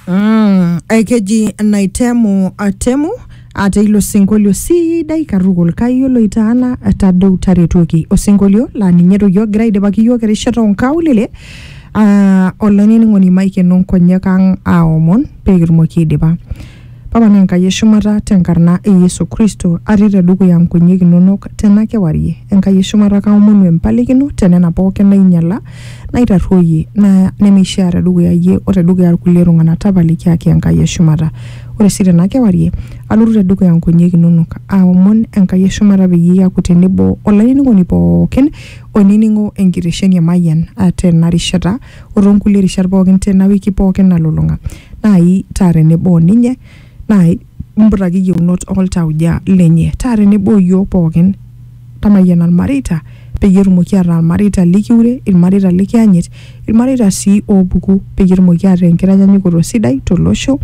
Mm, eh, keji naitemu atemu ate ilo sinkolio sidai katukul kayiolo itaana tadou taretoki osinkolio laa ninye toki ogira aidipaki yiok erishata onkaulele uh, olainining'oni maikeno nkonyek ang aomon pekitumoki aidipa Papa naa Enkai e shumata te nkarna e Yesu Kristo atii te dukuya nkonyek inonok tena kewarie. Enkai e shumata kaomonu empalikino te nena pooki nainyala, naitarruoyie, naya nemeishaa te dukuya iyie o te dukuya ilkulie tung'ana tapalikiaki Enkai e shumata. Ore sii tena kewarie alotu te dukuya nkonyek inonok aomon Enkai e shumata peyie iaku tenebo olainining'oni pooki oinining'o enkitesheni e Mayian tena rishata o too nkulie rishat pookin tena wiki pookin nalulung'a naai taa tenebo o ninye naai mputaki iyieunot oltauja lenye taa tenebo o iyiook pookin tamayiana ilmareita peyie etumoki ataa ilmareita likiure ilmareita likiyanyit ilmareita sii oopuku peyie etumoki ataa enkitanyanyukoto sidai tolosho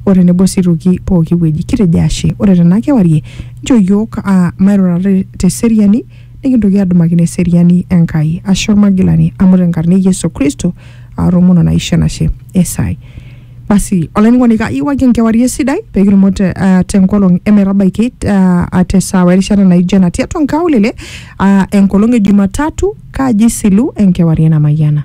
o tenebo sii toki pooki wueji kitejo ashe ore tena kewarie nchoo iyiook aa mairurata te- teseriani nikintoki adumakino eseriani Enkai ashe olmagilani amu tenkarna e Yesu Kristo aatomono naisho enashe esai. Basi olainining'oni kayiewaki enkewarie sidai pee kitumo te, ah, tenkolong emetabaiki ah, ah, tesaawa erishata naijo ena tiatua nkaulele ah, enkolong e Jumatatu kaji isilu enkewarie namayiana.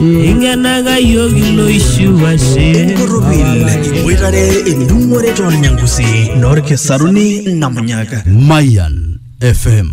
Ingenaga yiok iloishiu ashe. Enkorropil iboitare endung'ore toolnyangusi noolkisaruni namunyaka. Mayan FM.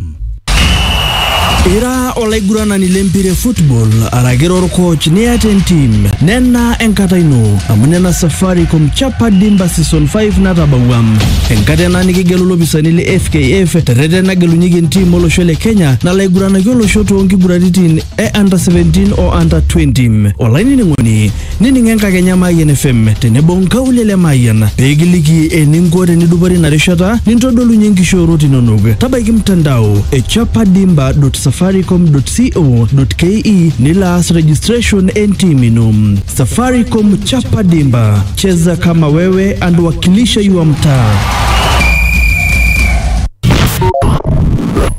Ira olaiguranani lempira e football araki orkoch niata entim nena enkata ino amu nena Safaricom Chapa Dimba Season 5 natabawua enkata ena nikigelu ilopisani le FKF terreten nagelunyeki entim olosho le Kenya nalo aiguranaki olosho toonkiguraritin e under 17 o under 20 olainining'oni nining enkakenya Mayian FM tenebo nkaulele Mayian pee kiliki eninko tenidupore ina rishata nintodolunye nkishoorot inonok tabaiki mtandao e chapadimba.safaricom.co.ke nilo aas registration entim ino Safaricom Chapadimba cheza kama wewe and wakilisha your mtaa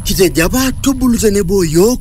Kitejo apa tubulu tenebo yiok